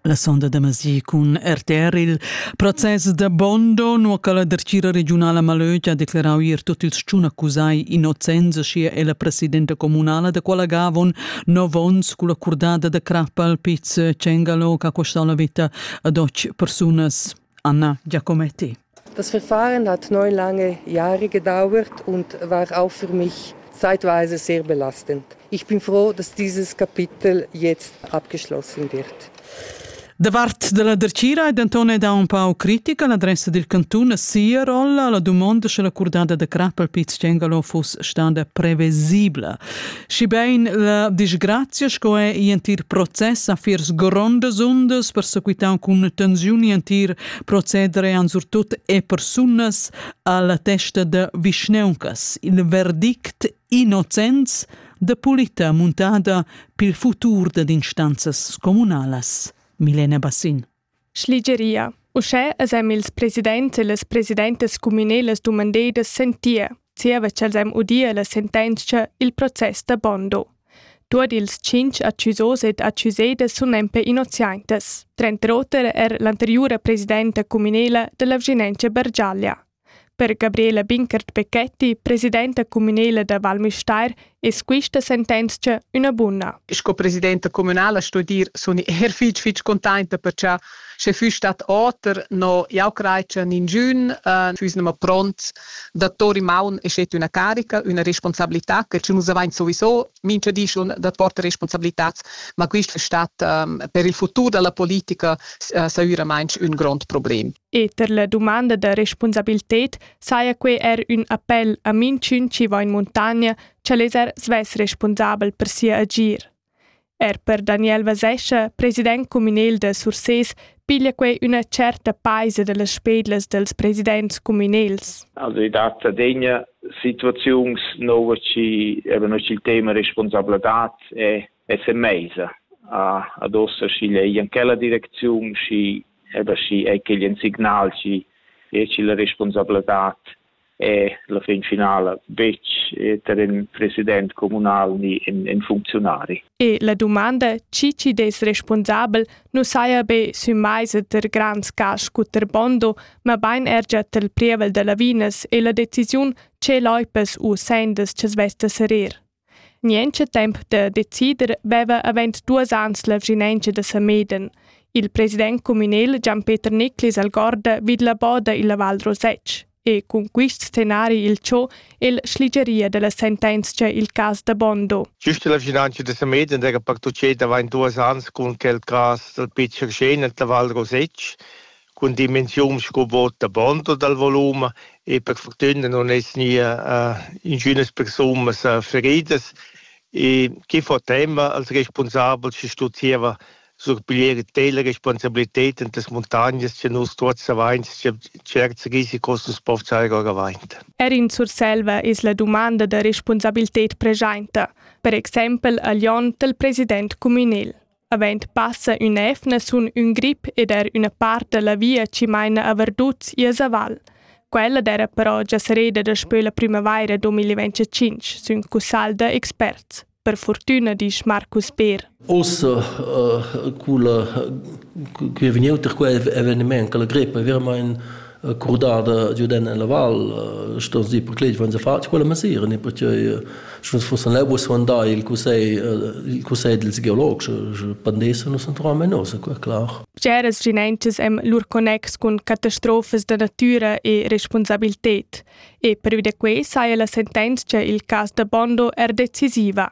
La sonda da Masi cun RTR il process da Bondo, nu che la dertgira regiunala Malögia ha declarau ier tutt ils tschun accusai innocenza sia e la presidenta comunala da quella gavon nov ons cu la curdada da crappa al piz Cengalo che ha costau la vita ad och persunas. Anna Giacometti. Das Verfahren hat neun lange Jahre gedauert und war auch für mich zeitweise sehr belastend. Ich bin froh, dass dieses Kapitel jetzt abgeschlossen wird. Davart della Dercira è denton da un pau critica l'adressa dil cantun a sia rolla. La dumonda sche l'accordada de crap al Piz Cengalo fuss stada previsibla. Schibein la disgrazia sco è entir process a fiers grondas undas persequitau cun tensioni entir procederean surtut e persunas alla testa de vischneuncas il verdict innocens de pulita muntada pil futur ded instanzas comunalas. Milena Bassin. Schligeria. Uschè es em ils presidents e las presidentas cumünelas dumandedas sentir, zieva ch'els em udia la sentenzia il process da Bondo. Tuot ils tschinch accusos ed accusedas sun nempe innoziaintas, tranter oter er l'anteriura presidenta cumünela da la Vschinengia Bergiaglia. Per Gabriela Binkert-Becchetti, presidenta cumünela da Val Müstair, es quista sentenzcha üna buna. Sco presidenta cumünala sto dir, sun i er fich fich containta per cha sche füss stat oter, no jau crai cha ninchün uh, füss nemma pront da tori maun e schet üna carica, üna responsabilità che nus avain sowieso mincha di schon da portar responsabilitats, ma quist stat per il futur da la politica saüramaing ün grond problem. E per la dumanda da respunsabilted saja quai er ün appel a minchün chi va in muntagna, ch'el es er svess respunsabel per sia agir. Er per Daniel Vasescha, president communal da Sursés, piglia quei üna certa paisa dallas spedlas dels presidents communals. Also i dat adegna situaziuns nova ci eben il tema responsabladad e e se meisa a ad ossa si lei in quella direcziun si eba si è che gli signal ci e ci la responsabladad è la fin finala betg tar in president communal ni in, in funcziunari. E la domanda chi chi dess responsabel nu saja be sü maisa ter grands cas scu ter Bondo, ma bain er già tel prievel da lavinas e la decisiun che Leupas u Sanders che svesta serir. Nientscha temps da decider veva avend duos ans la vschinauncha da Sameden. Il president cumünel Gian-Peter Nicklis al guarda vid la boda illa Val Rosec e cun quist scenari il cho el schligeria da la sentenzcha il cas da Bondo. Güst illa vschinauncha da Sameden d'eira partuchet avant duos ans cun quel cas dal Pitcher Schenert la Val Rosec cun dimensiun sco vot da bond dal volum e per fortüna non es nia ingünas persunas feridas e que fo tema als respunsabels chi stuzieva surpiglier tela responsabilität in tas muntagnas cha nus tuots avains cha tscherts risicos nu's po fsar or avant. Er in Surselva es la dumanda da respunsabilität preschainta, per exaimpel a Lyon dal president cumünel. Avend passa ün'efna sun ün grip ed er üna part da la via chi maina a Verduts i a Zaval. Quella d'eira però già serreda daspö la prümavaira 2025, sün cussagl da experts. Per fortüna disch Marcus Beer. Ossa uh, culla, che è vegniuta qua eveniment, che la grippa è veramente curdada giudend en la val sto dir per clei van fatg quella mesira ne perché schon fossen lebus van da il cussei il cussei dils geologs pandesa nus entram en nos qua clar Ceras ginentas em lur connex cun catastrofas da natura e responsabilität e per vide quei saja la sentenza il cas da Bondo er decisiva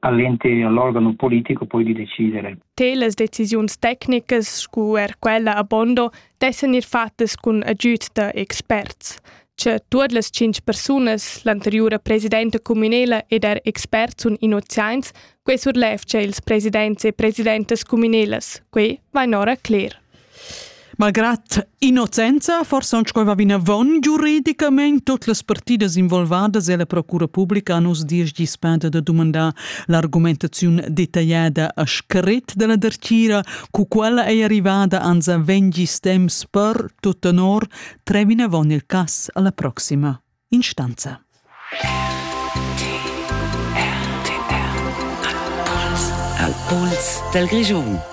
a l'entir l'organo politico poi di decidere. Te las decisiuns tecnicas scu er quella a Bondo dessan ir fattas cun agüd da experts. Che tuot las cinc persunas, l'anteriura presidenta cuminela ed er experts sun innoziaints, quei surlevce ils presidents e presidentas cuminelas, quei vain ora cler. Malgrad innocenza, forsa aunc va vinavon giuridicamain tot las partidas involvadas e la procura publica han uss diesch dis penda da dumandar l'argumentaziun detagliada a scrit della dertgira, cu quella ei arrivada ans vegn gis temps per, tot tenor, tre vinavon il cass alla proxima instanza. Al Puls del Grischun